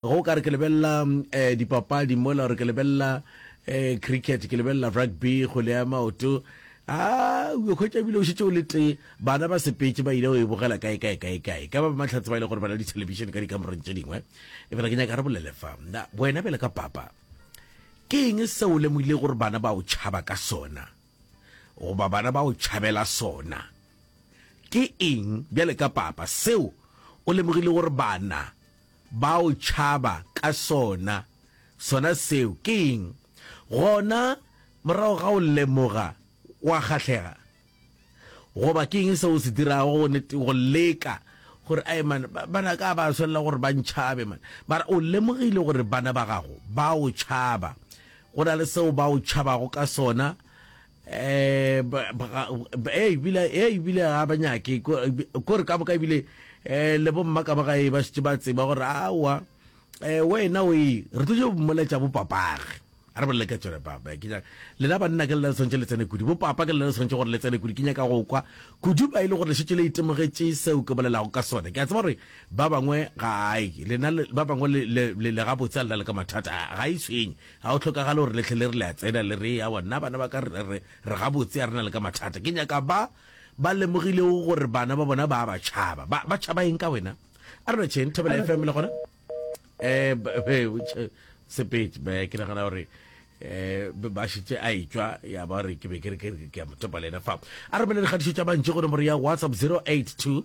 Ge o ka re ke lebelela dipapadi mola, gore ke lebelela cricket, ke lebelela rugby, kgwele ya maoto, a o yo hwetša ebile o šetše o le tee. Bana ba sepetše ba ile go e bogela kae, kae, kae, kae. E ka ba Mahlatse ba e lego gore ba na le dithelebišene ka dikamoreng tše dingwe. Efela ke nyaka re bolele fa, na wena bjale ka papa, ke eng seo o lemogilego gore bana ba o tšhaba ka sona, goba bana ba o tšhabela sona? Ke eng bjale ka papa seo o lemogilego gore bana Ba o tšhaba ka sona. Sona seo ke eng? Gona morago ga go lemoga, wa kgahlega? Goba ke eng seo o se dirago go leka gore, Ai, man, bana ka ba swanela gore ba ntšhabe, man. Mara o lemogile gore bana ba gago ba o tšhaba. Go na le seo ba o tšhabago ka sona, eh ebile eh ebile a ba nyake kore ka boka ebile eh le bomma ka ba gae ba šitše ba tseba gore awa eh wena o e re tlo mmoletša bo papage a re bolele ka tsone papa ke nyaka lena banna ke lela le tshwanetse le tsene kudu bo papa ke lela le tshwanetse gore le tsene kudu ke nyaka go kwa kudu ba e le gore le šitše le itemogetše seo ke bolelago ka sone ke a tseba gore ba bangwe ga ai lena ba bangwe le ga botse a lena le ka mathata ga e tshwenye Ga go hlokagale gore le hle le re le a tsena le re, Awa, nna bana ba ka re, re, re gabotse, a re na le ka mathata. Ke nyaka ba ba lemogilego gore bana ba bona ba a ba tšhaba. Ba, ba tšhaba eng ka wena? A re no tšheng, Thobela FM le gona? Eh, ba- eh, o tšhe- Sepedi, ba- ke nagana gore eh ba šitše a etšwa ya ba re ke be ke re ke re ke a mo topa le ena fa a romelele kgatišo tša bantši go nomoro ya whatsapp 082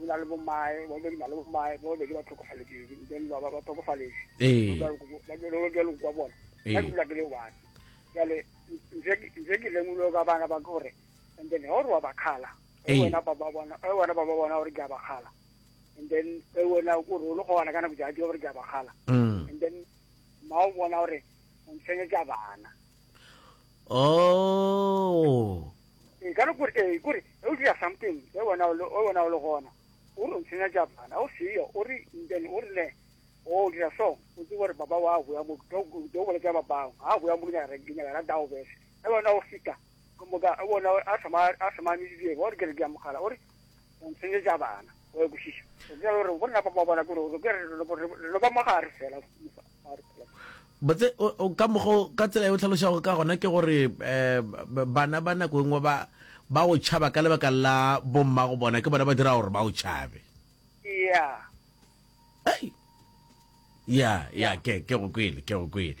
o na le bomae ba bobedi na le bomae ba bobedi ba tlhokofaletšedi then ba ba tlhokofaletše ee. ba jalo jalo kwa bona ka ee. dula ke le one jale nje ke lemulo ka bana ba gore and then ga o re wa bakgala ee. wena ba ba bona e wena ba ba bona gore ke a bakgala and then e wena o re o le go bona ka nako ja ke gore ke a bakgala mm. and then ma o bona gore o ntshenge ke a bana oh nka re kore ee kore e o dira something e wena o le o wena o le gona o re ntsenya ja bana o seyo o re then o re ne o dira so o tse gore baba wa go ya mo do do bole ja baba ha go ya mo nyara ke nyara da o bese e wena o fita go mo ga wona a sama a sama ni di o re ke re ga mogala o re o ntsenyetša bana wa ekwešiša gore go nna papa bona kore ke re lo ba mo gare fela botse ka mogo ka tsela e o tlhalošago ka gona ke gore um bana ba nako e nngwe ba ba o tšhaba ka lebaka la bomma go bona ke bona ba dira gore ba o tšhabe ya ya ya ke ke go kwele ke go kwele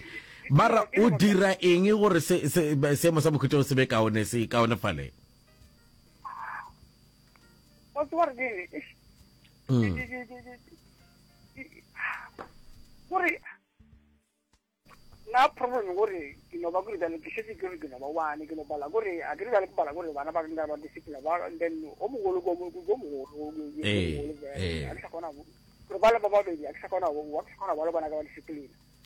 mara o dira eng gore se se seemo sa bokhutšo se be kaone se kaone faleng wa tseba gore kene gore na problem gore ke no ba gore bjale ke šetse ke re ke no ba one ke no bala gore a ke re bjale ke bala gore bana ba nka ba discipline ba then o mogolo ko mogolo mogolo a ke sa kgona gore ba le ba babedi a ke sa kgona wa ke sa kgona ba le bana ka ba discipline